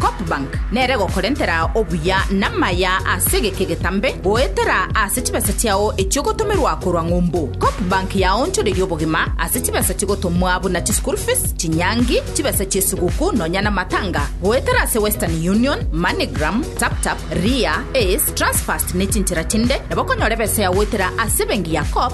Copbank nere egokorentera obuya namaya ase egeke getambe goetera ase chibesa chiao echio ogotomerwa korwa ng'umbu. Copbank yaonchoreirie obogima ase chibesa chigotomwa buna chischool fees, chinyangi, chibesa chiesiguku nonya namatanga goetera ase Western Union, Moneygram, Taptap, Ria, Ace, Transfast nechinchera chinde nabo okonyora ebesa yagoetera ase ebenki ya Coop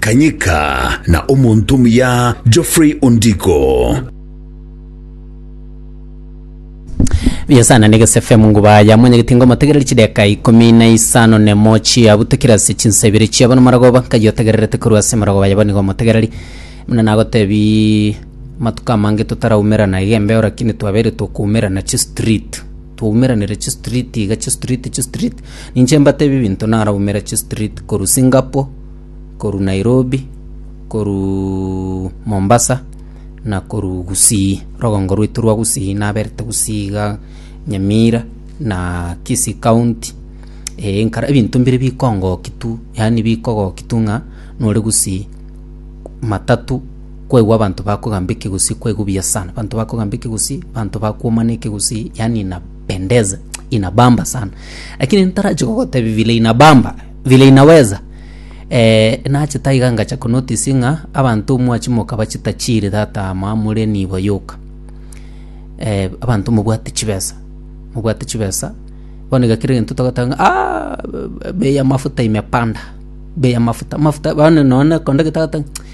Kanyika na omonto omuya Geoffrey Ondiko. Yesu anane gesefe munguba ya mwanyagete ngo motegereri chideka ikomi na isano nemo chiabutekire ase chinsa ibere chiabo nomorogoba nkayotegererete korwa ase morogoba yabo nigo motegereri muna nagotebi matuko amange totaraumerana iga embeo rakini twabeire tokoumerana chistreet Twaumeranire chistreet iga chistreet chistreet ninche mbatebie ebinto naraumera chistreet korwa Singapore korwa Nairobi korwa Mombasa na korwa Gusii rogongo rwaito rwa Gusii naberete Gusii iga Nyamira na Kisii county eh nkare ebinto mbire bikongokia tu yaani bikogokia tu ng'a nore Gusii matatu kwaigwa abanto bakogamba ekegusii kwaigwa buya sana abanto bakogamba ekegusii abanto bakwomana ekegusii yani inapendeza inabamba sana lakini ntarachi gogotebi vile inabamba vile inaweza eh, nache taiga ngacha konotisi ng'a abanto mwachimoka bachita chiri tata ama more nibo yoka eh, abanto mobwate chibesa mobwate chibesa bono iga kera gento togoteba ng'a "Ah, bei ya mafuta imepanda bei ya mafuta mafuta bono nonye konde getagoteba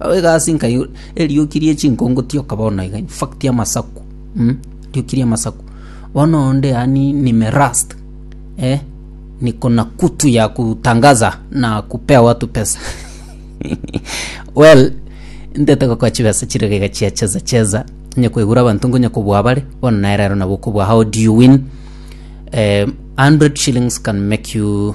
Ao egasi nkai erioki rie chinkongo tioka bono iga in fact amasaku mm rioki ria amasaku bono onde yaani nimerust eh niko na kutu ya kutangaza na kupea watu pesa well ntete gokoa chibesa chire iga chia cheza cheza onye koigura abanto ngonye kobua abare bono nere ero nabo okobua how do you win eh, 100 shillings can make you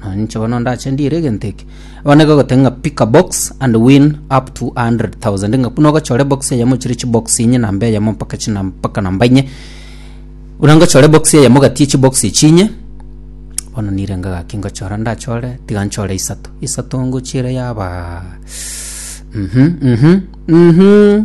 Na inche bono ndache ndiire egento eke bono nigo egoteba ng'a pick a box and win up to 100000 ng'a buna ogochore box eyemo chire chibox inye namba eyemo mpaka china mpaka namba inye buna ngochore box eyemo gati ya chibox echi inye bono nire ngagaki ngochora ndachore tiga nchore isato isato ngochiera yabaa mhm mhm mhm.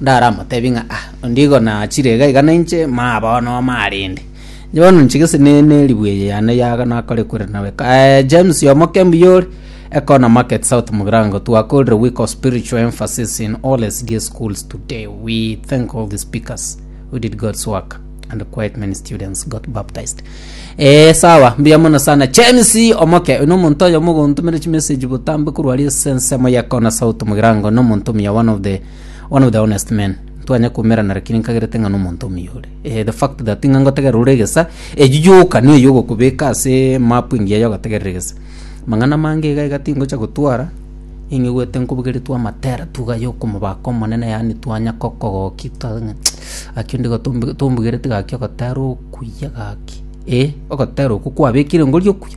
Ndaramotebi ng'a, Ah, onde igo nachire iga iga nainche, maa bono omaa rende. Inche bono ninche gese ne neribu eye yane ya nakore ekweri nawe. Eh, James omokembu yore, Econo Market South Mugirango, twakorire week of spiritual emphasis in all SDA schools today. We thank all the speakers who did God's work and quite many students got baptized. Eh, sawa, mbuya mono sana. James omoke, uno omonto oyo mogontumire chimessage botambe korwa ari esensemo ya Econo South Mugirango, no omonto omuya one of the One of the honest men ntwanya koumerana lakini nkagerete ng'a nomonto omuyore eh, the fact that ng'a ngotegerera ore egesa eyi yoka niyo yogokobeka ase mapu engiya yogotegerera egesa mang'ana mange iga iga tingocha gotwara ing'igwete nkobogeretwe amatera tuga yokomobaka omonene yaani twanya kokogoki twa ng'a gaki onde iga tombu- tombugerete gaki ogotera okuya gaki eh ogotera okwo kwabekire ngori okuya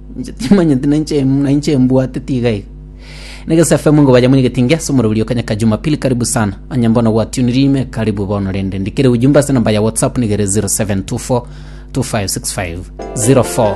Inche timanyeti nainche em- nainche embwateti iga iga negesa fm ngo baja mwigeti ingia ase omorobiri yo kanyaka jumapili karibu sana onye mbono gwatuniri ime karibu bono rende ndikere ujumbe ase namba ya whatsapp nigere 0724 256504